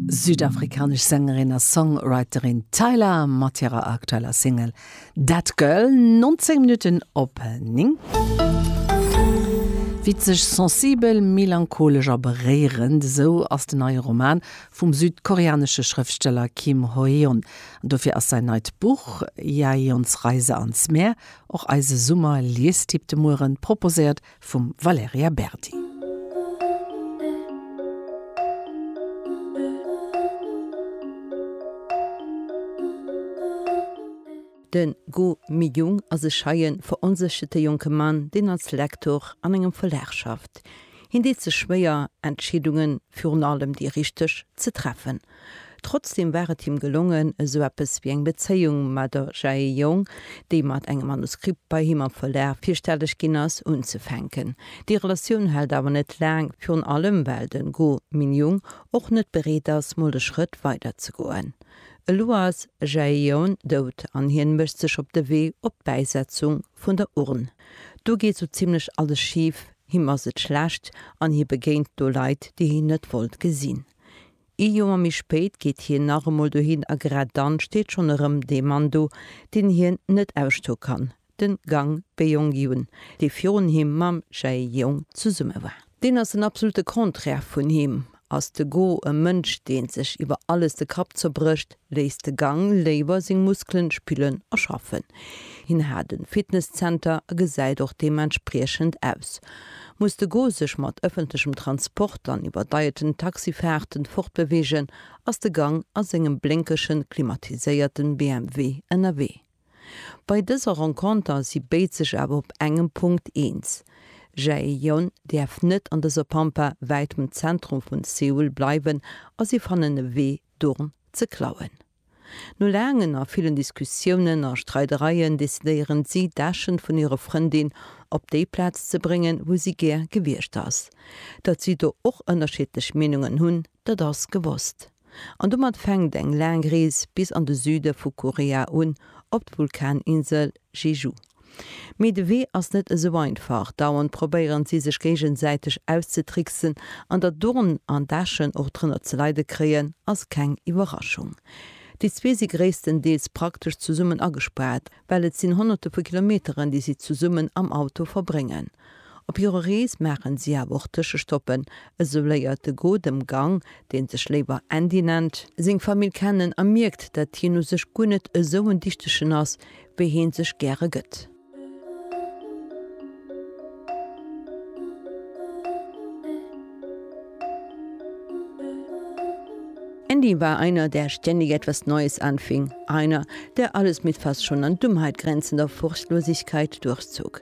Südafrikanesch Sängerin a Songwriterin Tyla mat hirer aktueller Single That Girl, 19 Minutten op 9. Witzeg, sensibel, melancholesch a beréierend, esou ass den neie Roman vum südkoreanesche Schrëftsteller Kim Ho-yeon. An dofir ass säin neit Buch Jaeyeons Reise ans Meer, och eise Summer-Liestipp de Mueren, proposéiert vum Valerija Berdi. De Go Mi-young ass e scheien, veronsécherte jonke Mann, deen als Lektor an engem Verlag schafft. Hien deet sech schwéier, Entscheedungen, virun allem déi richteg, ze treffen. Trotzdem war et him gelongen, esou eppes wéi eng Bezéiung mat der Jae Young, déi mat engem Manuskript bei him am Verlag virstelleg ginn ass, unzefänken. Déi Relatioun hält awer net laang, virun allem well de Go Min-young och net bereet ass, mol de Schrëtt weider ze goen. Elo ass Jae Young dout an hien mécht sech op de Wee op d'Bäisetzung vun der Urn. Do geet sou zimmlech alles schif, him ass et schlecht an hie begéint do Leit, déi hien net wollt gesinn. Ee Joer méi spéit geet hien nach emol dohin a grad dann steet schonn erëm dee Mann do, deen hien net ausstoe kann, de Gang Beong-Gun, dee virun him mam Jae-Yong zesumme war. Deen ass den absolute Contraire vun him. Ass de Go e Mënsch, deen sech iwwer alles de Kapp zerbrécht? Léisst de Gang léiwer seng Muskelen spillen a schaffen. Hien hat en Fitness-Zenter a gesäit och deementspriechend aus. Muss de Go sech mat ëffentlechem Transport an iwwerdeierten Taxifaarten fortbeweegen, ass de Gang a sengem blénkegen, klimatiséierten BMW ënnerwee. Bei dëser Renconter si béid sech awer op engem Punkt eens, Jaejeon däerf net an dëser Pampa, wäitem Zentrum vun Seoul, bleiwen a si fannen e Wee, D'Urn ze klauen. No laangen a villen Diskussiounen a Streidereien decidéieren si, d'Äschen vun hirer Frëndin op déi Plaz ze bréngen, wou si gär gewiescht ass. Datt si do och ënnerschiddlech Meenungen hunn, dat ass gewosst. An domat fänkt eng laang Rees bis an de Süde vu Korea un, op d'Vulkaninsel Jeju. Mee de Wee ass net esou einfach. Dauernd probéieren si sech géigesäiteg auszetricksen. An datt Dorn an Daschen och drënner ze leide kréien, ass keng Iwwerraschung. Déi zwee si gréisstendeels praktesch zesummen agespaart, well et sinn Honnerte vu Kilometeren, déi si zesummen am Auto verbréngen. Op hirer Rees maachen si awer och Tëschestoppen, esou léiert de Go dem Gang, dee sech léiwer Andy nennt, seng Famill kennen a mierkt, dat hien u sech guer net esou en Dichtegen ass, wéi hie sech gäre gëtt. Andy war einer, der ständig etwas Neues anfing, einer, der alles mit fast schon an Dummheit grenzender Furchtlosigkeit durchzog.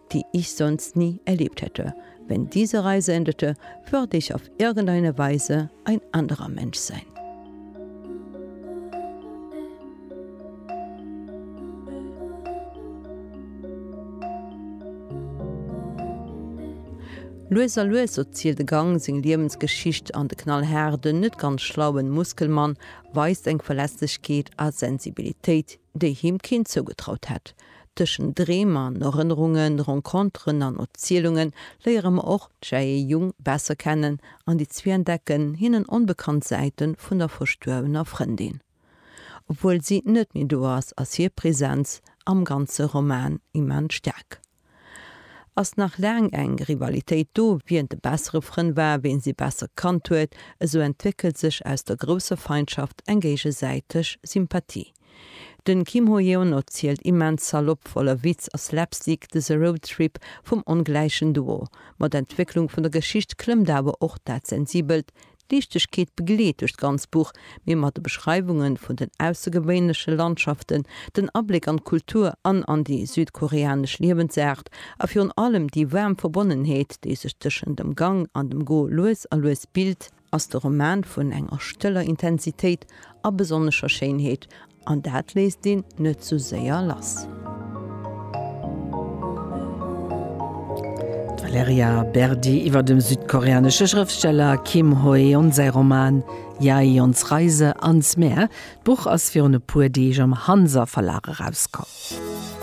die ich sonst nie erlebt hätte, wenn diese Reise endete, würde ich auf irgendeine Weise ein anderer Mensch sein. Lues a lues erzielt de Gang seng Liewensgeschicht an de knallhaarden, net ganz schlauen Muskelmann weist eng Verletzlechkeet a Sensibilitéit, déi him keen zougetraut hätt. Tëschent Dreem an Erënnerungen, Renconteren an Erzielunge léiere mer och d'Jae Jung besser kennen an déi zwee entdecken hinnen onbekannt Säite vun der verstuerwener Frëndin. Obwuel si net méi do ass, ass hir Presenz am ganze Roman immens staark. Ass nach laang eng Rivalitéit do, wien de bessere Frënd war, wien si besser kannt huet, esou entwéckelt sech aus der grousser Feindschaft eng géigesäiteg Sympathie. Den Kim Ho-yeon erzielt immens salopp, voller Witz a Slapstick, dëse Roadtrip vum ongläichen Duo. Mat Entwécklung vun der Geschicht klëmmt awer och dat Sensibelt. D'Liichtegkeet begleet duerch d'ganz Buch, mee mat de Beschreiwungen vun den aussergewéinleche Landschaften, den Abléck an d'Kultur an an déi südkoreanesch Liewensaart a virun allem déi waarm Verbonnenheet, déi sech tëschent dem Gang an dem Go lues a lues bilt, ass de Roman vun enger stëller Intensitéit a besonnescher Schéinheet, an dat léisst een net sou séier lass. D'Valerija Berdi iwwer dem südkoreanesche Schrëftsteller Kim Ho-eun säi Roman Jaeyeons Reise ans Meer. D'Buch ass virun e puer Deeg am Hanser Verlag erauskomm.